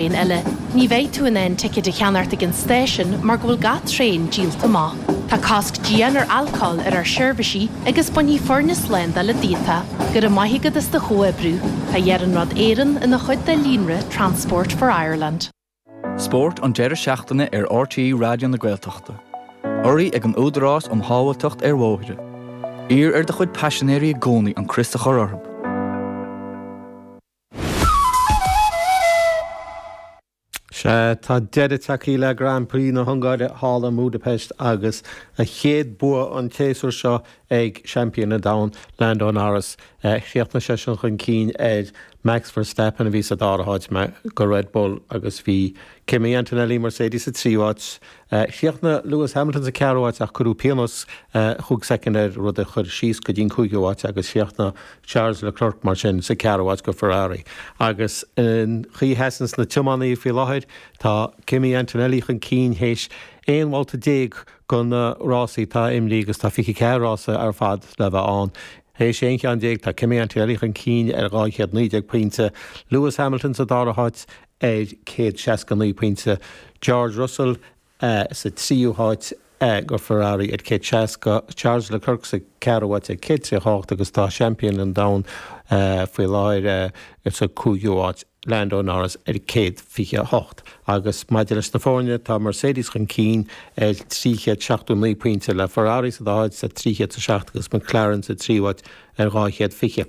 traen eile. Ní bheidh tú in ann ticéad a cheannacht ag an stáisiún mar go bhfuil gach traen díolta amach. Tá cosc dian ar alcóil ar ár seirbhísí agus bainfidh foirne slándála díot é. Go raibh maith agat as do chomhoibriú. Tá Iarnród Éireann ina chuid de líonra Transport for Ireland. Spórt an deireadh seachtaine ar RTÉ Raidió na Gaeltachta. Urraithe ag an Údarás um Shábháilteacht ar Bhóithre. Iarr ar do chuid paisinéirí i gcónaí an crios a chur orthu. Sea, tá deireadh tagthaí le Grand Prix na hUngáire thall i mBúdaipeist agus a chéad bua an tséasúir seo ag seaimpín an domhain, Lando Norris. Chríochnaigh seisean chun cinn ar Max Verstappen a bhí sa dara háit go Red Bull agus bhí Kimi Antonelli, Mercedes, sa tríú háit Chríochnaigh Lewis Hamilton sa ceathrú háit ach cuireadh pionós chúig soicind air, rud a chuir síos go dtí an cúigiú háit agus chríochnaigh Charles Leclerc mar sin sa ceathrú háit go Ferrari. Agus an chaoi a sheasanns na tiománaithe faoi láthair, tá Kimi Antonelli chun cinn théis 11 bhabhta de na rásaí atá imrithe agus tá 24 rása ar fad le bheith ann. Théis 11 cheann, tá Kimi Antonelli chun cinn ar 219 pointe, Lewis Hamilton sa dara háit ar 169 pointe, George Russell sa tríú háit, go Ferrari ar 160, Charles Leclerc sa cheathrú háit ar 138 agus tá seaimpín an domhain faoi láthair sa chúigiú háit, Lando Norris ar 128. Agus maidir leis na foirne, tá Mercedes chun cinn ar 379 pointe, le Ferrari sa dara háit ar 307 agus McLaren sa tríú háit ar 220.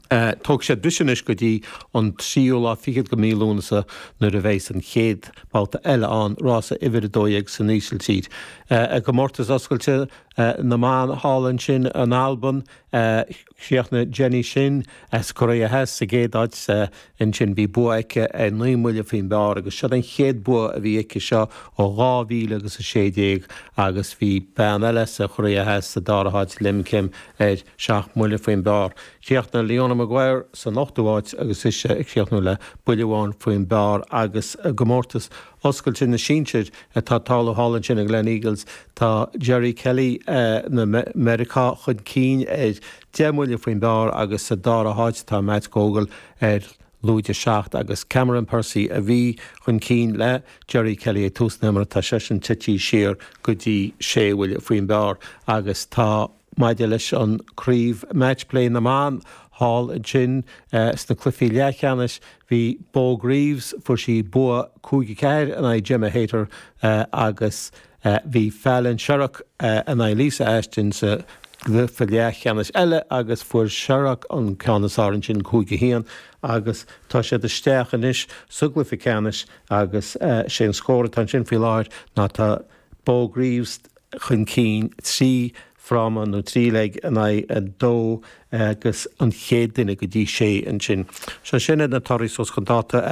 Tógfaidh siad briseadh anois go dtí an tríú lá fichead go mí Lúnasa nuair a bheas an chéad bhabhta eile ann, rása uimhir a dó dhéag san Ísiltír. I gcomórtas oscailte na mban thall ansin in Alban, chríochnaigh Jenny Shin as Korea Theas sa gcéad áit sa Ansin bhí bua aici ar naoi mbuille faoin bpar agus siod an chéad bua a bhí aici seo ó dhá mhíle agus a sé déag agus bhí bean eile sa Chorea Theas sa dara háit, Lim Kim, ar seacht mbuille faoin bpar. Chríochnaigh Leona Maguire san ochtú háit agus ise a chríochnaigh le buille amháin faoin bpar agus i gcomórtas oscailte na sinsear atá tarlú thall ansin i nGleneagles tá Jerry Kelly na Meiriceá chun cinn ar Deich mbuille faoin bpar agus sa dara háit atá Matt Gogel ar lúide 7 agus Cameron Percy a bhí chun cinn le Jerry Kelly ag tús na himeartha. Tá seisean tití siar go dtí sé bhuille faoin bpar agus tá maidir leis an craobh Match Play na mBan thall ansin sna cluichí leathcheannais. Bhí Beau Greaves, fuair sí bua 5-4 in aghaidh Gemma Hayter agus a bhí Fallon Sherrock in aghaidh Lisa Ashton sa gcluiche leathcheannais eile agus fuair Sherrock an ceann is fearr ansin, cúig, a haon, agus tá siad isteach anois sa gcluiche ceannais agus is é an scór atá ansin faoi láthair ná tá Beau Greaves chun cinn trí fráma nó trí leg in aghaidh a dó agus an chéad duine go dtí sé ansin. Sea, sin iad na torthaí suas chun dáta.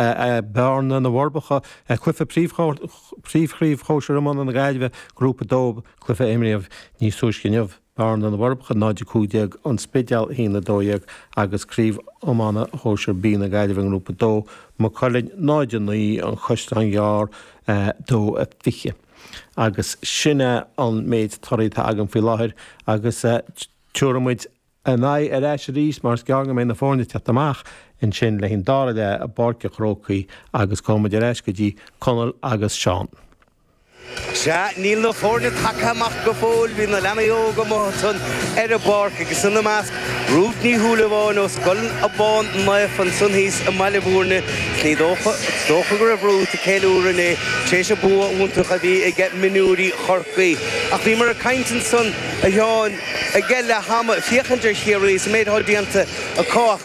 Bearna, Na bhForbacha, Cluife Príomhchraobh Shóisir Iomána na Gaillimhe, Grúpa 2, Cluife a imríodh níos túisce inniu, Bearna, Na bhForbacha 0, 15, An Spidéal 1, 12 agus Craobh Iomána Shóisir B na Gaillimhe, nGrúpa 2, Maigh Cuilinn 0, 9, An Caisleán Gearr 2, 20. Agus sin é an méid toraidh atá agam faoi láthair agus tiúrfaidh muid a n-aghaidh ar ais arís mar is gearr go mbeidh na foirne ag teacht amach ansin le haghaidh an dara leath i bPáirc a' Chrócaigh agus gabhfaidh muid ar ais go dtí Conall agus Seán. Sea, níl na foirne tagtha amach go fóill, bhí na leanaí óga amuigh ansan ar an bpáirc agus ina measc, Rút Ní Shúilleabháin ó Scoil Abán Naofa ansan thíos i mBaile Bhúirne, is ní dócha go raibh Rút ag ceiliúradh inné tar éis an bua iontach a bhí age mionúirí Chorcaí. Ach bhíomar ag caint ansan, a Sheáin, age leath ama, féachaint ar Chiarraí is an méid atá déanta acu ach,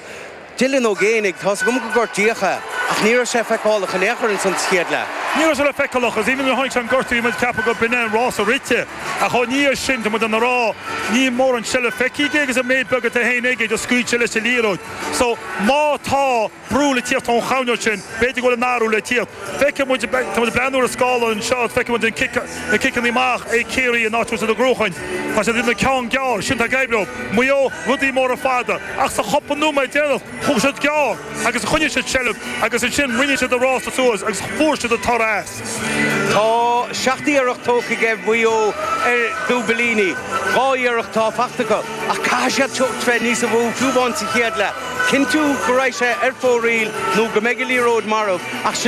Dylan Ó Géibheannaigh, Tá's agam go gortaíodh é, ach ní raibh sé feiceálach in aon chor ins an chéad leath. Ní raibh sé le feiceálach, agus even nuair a tháinig sé an gortú, muid ag ceapadh gur b'in é an rása rite, ach ina dhiaidh sin, tá muid in ann a rá, níl mórán seilbh feicthe aige, agus an méid beag atá féin aige, just scaoil sé leis an liathróid. So, má tá brú le tíocht ón choirnéal sin, b'fhéidir go bhfuil an athrú le tíocht. Feiceann muid, tá muid ag breathnú ar an scáileán anseo, feiceann muid an cic, na ciceanna amach ag Ciarraí in áit Mhuintir na gCruachain. Tá siad ina gceann gearr, sin atá ag éirí leo. Maigh Eo, rudaí móra fada. Ach sa chúpla nóiméad deireanach, thóg siad gearr agus choinnigh siad seilbh agus ansin rinne siad an rása suas agus fuair siad an toradh as. Tá seacht iarracht tógtha age Mhaigh Eo ar dhúibilíní. Dhá iarracht atá faighte acu. Ach caithfidh siad teacht bheith níos a mhó, fiú amháin sa chéad leath. Cinntiú go raghadh sé ar fóraoil nó go mbeidh an liathróid marbh. Ach sin é.